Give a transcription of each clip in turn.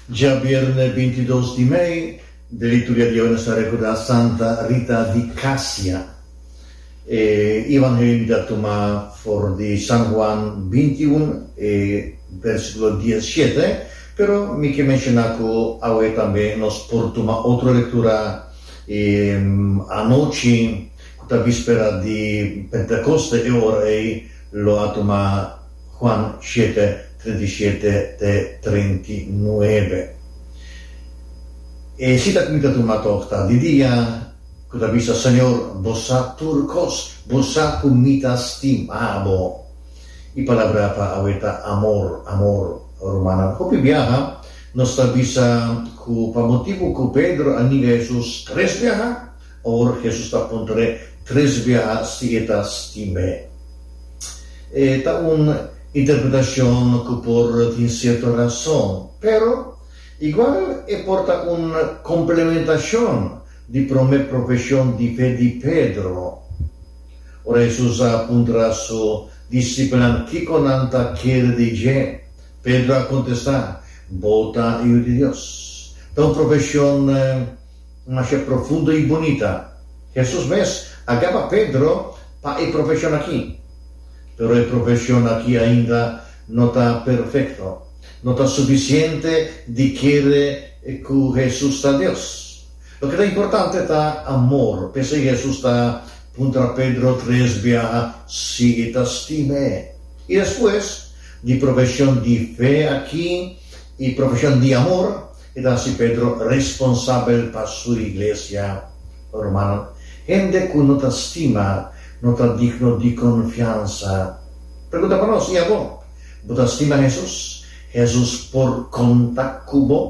Dja bierne bintidos di mei den liturgia di awe nos ta rekordá Santa Rita di Kasia. E Evangelimi ta tuma for di San Huan bintiun e bersikulo dies shete, pero mi ke menshoná ku awe tambe nos por tuma otro lektura e anochi ku ta bispera di Pentekoste e ora ei lo a tuma Juan siete, treinta i siete te treinta i nuebe. E sita ku mi ta tuma tok ta di dia ku ta bisa, Señor, Bo sa tur kos, Bo sa ku mi ta stima Bo. E palabra pa awe ta amor, amor. Rumannan, hopi biaha nos ta bisa ku pa motibu ku Pedro a niga Hesus tres biaha, Ora Hesus ta puntra e tres biaha si e ta stim'é, e ta un interpretashon ku por tin sierto rason, pero igual e por ta un komplementashon di promé profeshon di fe di Pedro. Ora Hesus a puntra su disipelnan kiko nan ta kere di dje, Pedro a kontestá, Bo ta Yu di Dios. Ta un profeshon. un ashá profundo i bunita. Hesus mes a gaba Pedro pa e profeshon akí. Pero e profeshon akí ainda no ta perfekto. No ta sufisiente di kere ku Hesus ta Dios. Loke ta importante ta amor. P'esei Hesus ta puntra Pedro tres biaha si e ta stima e. I despues di profeshon di fe akí i profeshon di amor, I ta hasi Pedro responsabel pa su iglesia. Oh, ruman, hende ku no ta stima no ta digno di konfiansa. Pregunta pa nos, i abo? Bo ta stima Hesus? Hesus por konta ku bo?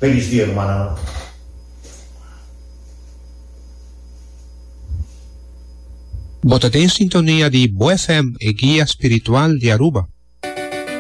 Felis dia, rumannan! Bo ta den sintonia di Bo FM, e guia spiritual di Aruba.